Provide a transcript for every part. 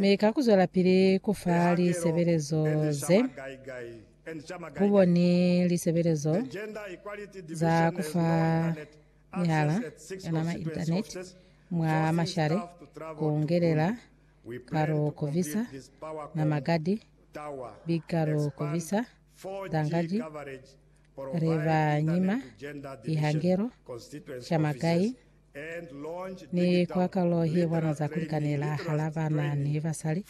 Mi ka ku zwelapili ku fa lisebelezo ze, ku bo ni lisebelezo za ku fa mihala ya nama, internet, mwa mashale, ku ngelela ka lu ku visa nama gadi big ka lu ku visa dangadi re ba nyima ihangelo shama gai Ni kwa kalo ye bona za kulikanela hala bana ni basali,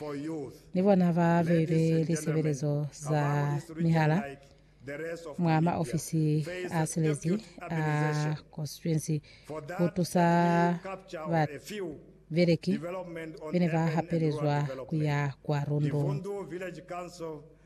ni bona ba be be lisebelezo za mihala mwa maofisi a silezi a konstituensi ku tusa babeleki bene ba hapelezwa kuya kwa lundung.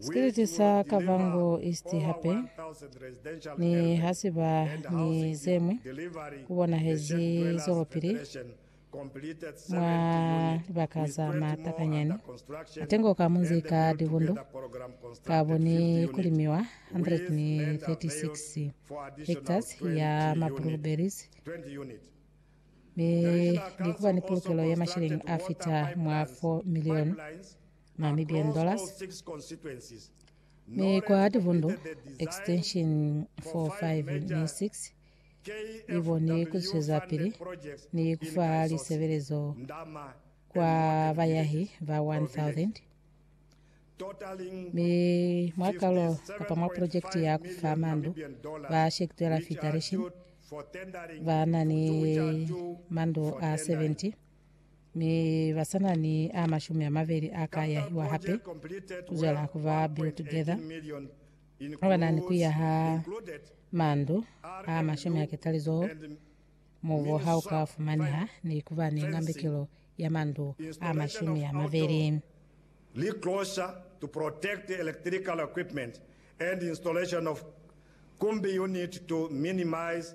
Sikiliti sa Kavango East hape ni ha si ba ni ze ñwi ku bonahezi zwelopili mwa libaka za matakanyani atengo ka munzi ka Divundu ka bo ni ku limiwa 136 hectares ya ma blueberries mi ni ku ba ni pulukelo ya mashilingi a fita mwa 4 milioni. ma million dollars mi kwa tivundu extension 4 5 ni 6 iboni kuzwezapili ni kufa lisebelezo kwa bayahi ba 1000 mi mwakalo kapa mwa projekti ya kufa mandu ba shekitwela federation ba na ni mandu a 70 mi ba sa na ni a mashumi a mabeli a ka yahiwa hape ku zwela ku ba Build Together, ba ba na ni ku yaha mandu a mashumi a ketalizoho mubu ha u ka fumaneha, ni ku ba ni ngambekelo ya mandu a mashumi a mabeli. li closure to protect electrical equipment and installation of kumbi unit to minimize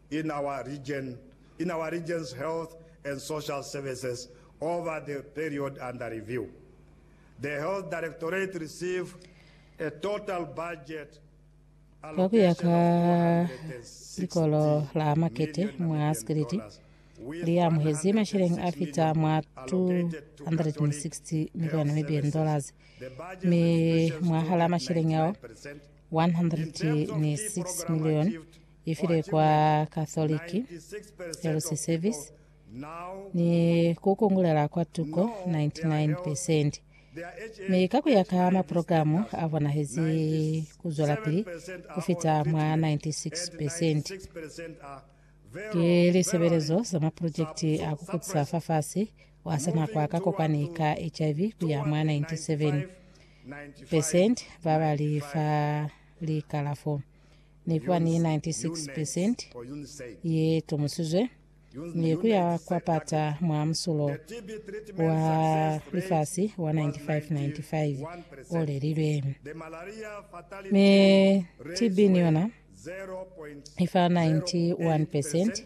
in our region in our region's health and social services over the period under review. The Health Directorate receive a total budget Kwa ku ya ka likolo la makete mwa sikiliti, li amuhezi masheleng a fita mwa 260 milioni Namibian dollars, mi mwahala masheleng ao 106 milioni I file kwa Catholic Health Service ni ku kungulela kwa tuko 99 percent. Mi ka kuya ka maprogramu a bonahezi ku zwelapili ku fita mwa 96 percent. Ki lisebelezo za maprojekiti a ku kutisa fafasi wa sanakwa ka kopani ka HIV ku ya mwa 97 percent ba ba li fa likalafo. ne kuba ni 96 percent ye tomusizwe ne kuya kwa pata mwa musulo wa lifasi wa 9595 o lelilwe. Ne TB ni yona ifa 91 percent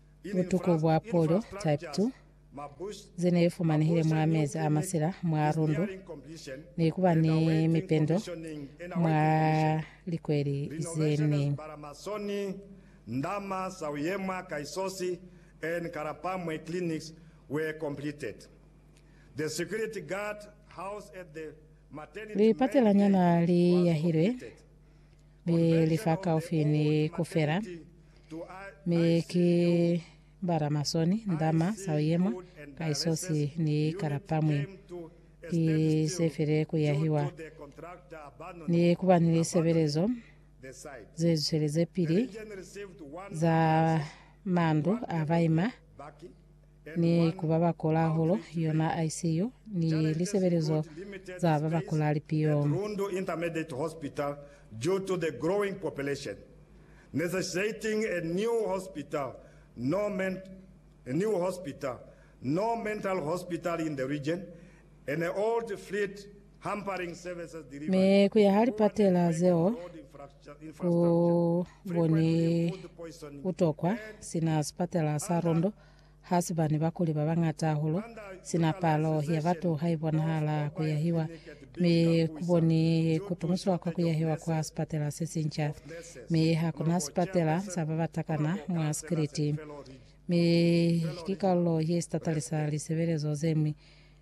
Butuku bwa pulyo, type 2, ze ne fumanehile mwa mezi a masila mwa lundu ne ku ba ni mipendo mwa likweli ze ne. Paramasoni, Ndama, Sauyemwa, Kaisosi, and Karapamwe clinics were completed. The security guard house at the maternity main Lipatelanyana gate li was yahilwe. completed. Mi li fa kaufi ni ku fela, mi ki bala masoni, ndama, sauyemwa, kaisosi, ni kalapamwi. Ki se file ku yahiwa ni ku ba ni lisebelezo ze zweleze pili za mandu a baima ni ku ba ba kola hahulu, yona ICU, ni lisebelezo za ba ba kola lipio. Rundu Intermediate Hospital due to the growing population, necessitating a new hospital, no a new hospital, no mental hospital in the region, and old fleet hampering services delivery. Mi ku yaha lipatela zeo ku boni butokwa sina sipatela sa Rundu Ha si bane ba kuli ba bañata hahulu, sina palo ya batu ha i bonahala ku yahiwa, mi ku boni ku tumusiwa kwa ku yahiwa kwa sipatela se sinca. Mi ha ku na sipatela sa ba ba takana mwa sikiliti, mi ki kalulo ye sitatali sa lisebelezo ze ñwi.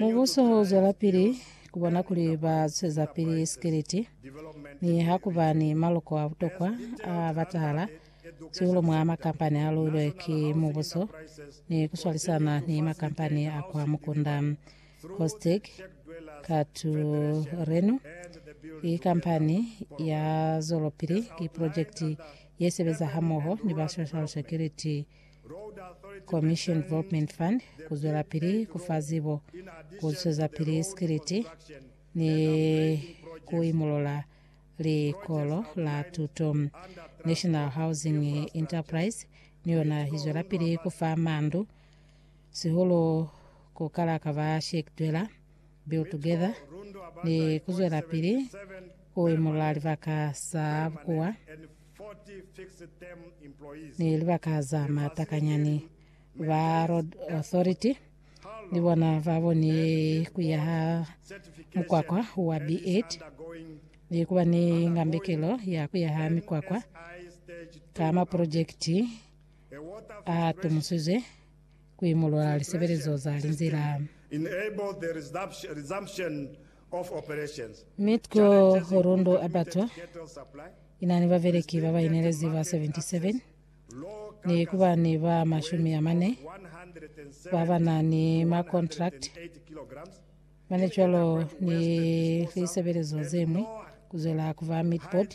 Mubuso u zwelapili ku bona kuli ba zwezapili sikiliti ni ha ku ba ni maloko a butokwa a batahala siulu mwa makampani a luilwe ki mubuso ni ku swalisana ni makampani a kwa mukunda. Kostic Katurenu ki kampani ya zwelopili ki projekiti ye sebeza hamoho ni ba social security Commission Development Fund ku zwelapili ku fa zibo, ku zwezapili sikiliti ni ku imulula likolo la tuto. National Housing Enterprise ni yona i zwelapili ku fa mandu, sihulu ku kala ka ba Sheikh Dwela Build Together ni ku zwelapili ku imulula libaka sa bukuwa Ni libaka za mata kanyani, ba Road Authority ni bona ba boni ku ya ha mukwakwa wa B8 ni ku ba ni ngambekelo ya ku ya ha mikwakwa ka maprojekiti a tumusizwe ku imulula lisebelezo za linzila. Mitco Horondo Abattoir inani babeleki baba inelezi ba 77 ni kubani ba mashumi amane baba na ni ma contract mane cwalo ni lisebelezo zemwi kuzwela kuba meat board.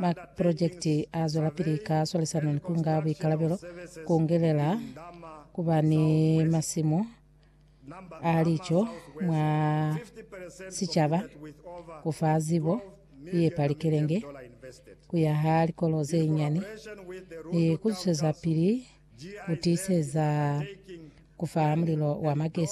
Maprojekiti a zwelapili ka swalisano ni ku nga buikalabelo, ku ngelela ku ba ni masimu a lico mwa sicaba, ku fa zibo ye pa likelenge, ku yaha likolo ze nyani, ni ku zwezapili ku tiiseza ku fa mulilo wa magesi.